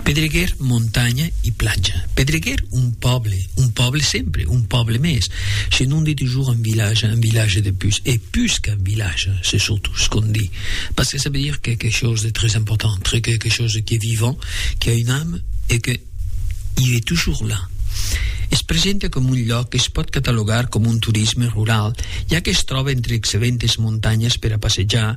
Pedreguer, montanha e platja. Pedreguer, un pòble, un pòble sempre, un pòble mès, se non de toujours un village, un village de pus, e pus qu'un village, se surtout ce qu'on dit, parce que ça veut dire quelque chose de très important, très quelque chose qui est vivant, qui a une âme e que i est toujours là. Es presenta coma un lloc que es pòt catalogar coma un turisme rural, ja que es tròba entre excellentes montanhas per a passejar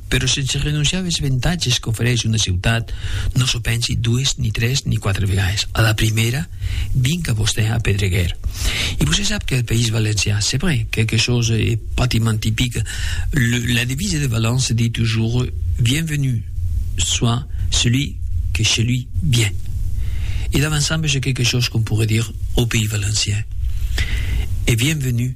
Però sense renonciar als avantatges qu'ofereix una ciutat, non s'o pensi dues, ni tres, ni quatre vegades. A la primèra, vinc a vostè a Pedreguer. E vos se sap qu'al País Valencià, c'est vrai, quelque chose e patiment typique, le, la devise de Valence se dit toujours Bienvenu soit celui que chez lui vient. E davançambe j'ai quelque chose qu'on pourrait dire au Pays Valencien. E bienvenu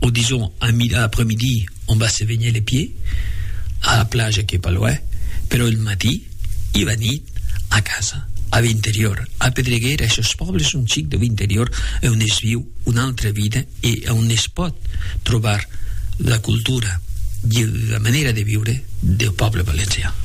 o dison a mida apremidi on va se venher le pie, a la plaja qu'ei pas loin, però el matí i va nit a casa, a Vinterior, a Pedreguer, eshos pòbles son chic de Vinterior e on es viu una altra vida e a on es pòt trobar la cultura i la manera de viure deu pòble valencian.